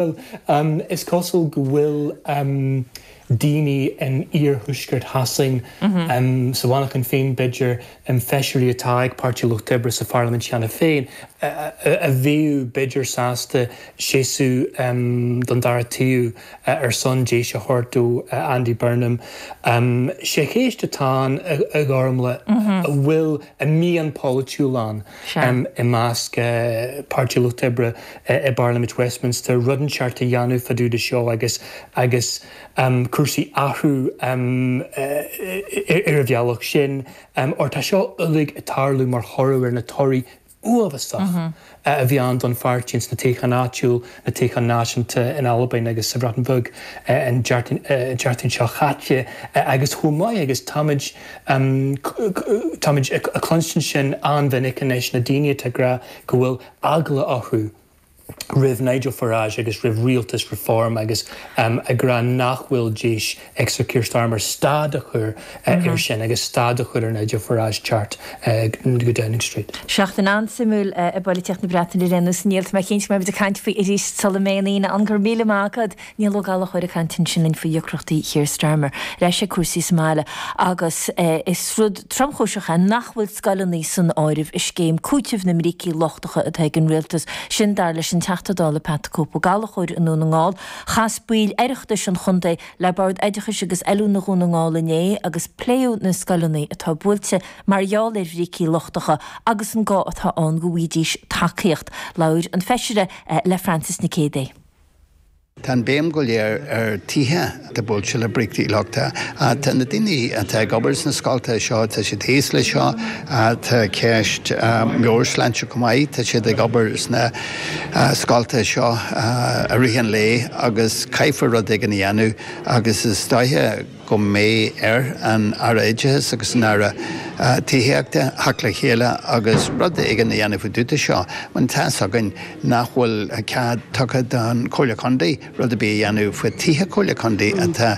Bhuel, is cosúil go bhfuil daoine in iarthuaisceart Shasain, sa Mhanchain féin b'fhéidir, feisirí atá ag Páirtí an Lucht Oibre sa pharlaimint cheana féin, a bheadh b'fhéidir sásta seasamh don dara taobh ar son deis a thabhairt do Andy Burnham. Sé an cheist atá ann, a Ghormfhlaith, an bhfuil an mhian pholaitiúil ann. i measc Pháirtí an Lucht Oibre i bParlaimint Westminster, rud inteacht a dhéanamh fá dtaobh de seo agus agus cúrsaí a athrú ar an bhealach sin, óir tá seo uilig ag tarlú mar thoradh ar na torthaí uafásacha a bhí ann don pháirtí ins na toghcháin áitiúil, na toghcháin náisiúnta in Albain agus sa Bhreatain Bheag an Deardaoin seo chaite agus chomh maith agus táimid. Táimid ag cluinstin sin an-mhinic anois, na daoine atá ag rá go bhfuil eagla orthu roimh Nigel Farage agus roimh rialtas Reform agus ag rá nach bhfuil deis ag Sir Keir Starmer stad a chur air sin agus stad a chur ar Nigel Farage teacht go Downing Street. Seachtain an-suimiúil i bpolaitíocht na Breataine a déarfainnse, a Néill. Tá mé cinnte go mbeimid ag caint faoi arís sula mbeidh an Aoine ann. Go raibh míle maith agat. Niall Ó Gallchóir ag caint ansin linn faoi dheacrachtaí Keir Starmer. Ar ais ag cúrsaí sa mbaile agus is rud tromchúiseach é nach bhfuil scoileanna san áireamh i scéim cúitimh na mbrící lochtacha atá ag an rialtas. Sin dar leis an Teachta Dála Pat the Cope Ó Gallchóir i nDún na nGall. Chas baill Oireachtais an chontae le Bord Oideachais agus Oiliúna Dhún na nGall inné agus pléadh na scoileanna atá buailte mar gheall ar bhrící lochtacha agus an gá atá ann go bhfaighidís tacaíocht. Labhair an feisire le Frances Nic Géadaigh. Tá an béim go léir ar tithe atá buailte le brící lochtacha. Tá na daoine atá ag obair sna scoltacha seo, tá siad thíos leis seo. Tá ceist meabhairshláinte chomh maith. Tá siad ag obair sna scoltacha seo i rith an lae agus caithfear rud éigin a dhéanamh agus is dóiche, go mbeidh ar an Aire Oideachais agus an Aire Tithíochta theacht le chéile agus rud éigin a dhéanamh fá dtaobh de seo, mar tá a fhios againn nach bhfuil cead tugtha don Chomhairle Contae rud ar bith a dhéanamh faoi tithe Comhairle Contae atá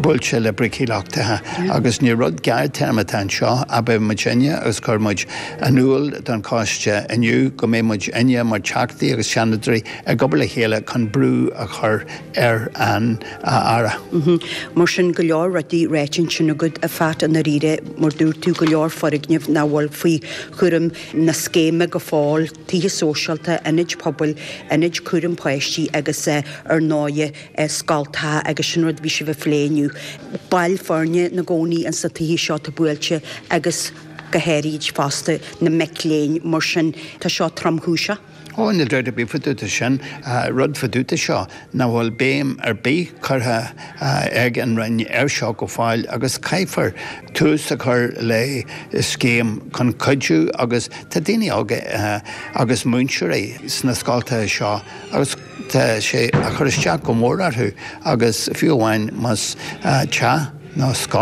buailte le brící lochtacha agus ní rud gearrthéarma atá anseo. Abair muidinne agus chuir muid in iúl don choiste inniu go mbeidh muidinne mar Teachtaí agus Seanadóirí ag obair le chéile chun brú a chur ar an Aire. Mar sin, go leor rudaí ráite ansin agat, a Phat, i ndáiríre, mar dúirt tú go leor foirgneamh nach bhfuil faoi chúram na scéime go fóill, tithe sóisialta, ionaid pobail, ionaid cúraim páistí agus ar ndóigh, scoltacha, agus sin rud a bhí sibh a phlé inniu. Baill foirne ina gcónaí insna tithe seo, atá buailte agus go háirid fosta na mic léinn, mar sin tá seo tromchúiseach. Ó, níl d'aird ar bith fá dtaobh de sin. Rud fá dtaobh de seo nach bhfuil béim ar bith curtha ag an Roinn ar seo go fóill agus caithfear tús a chur le scéim chun cuidiú agus tá daoine óga agus múinteoirí sna scoltacha seo agus tá sé a chur isteach go mór orthu agus fiú amháin más teach nó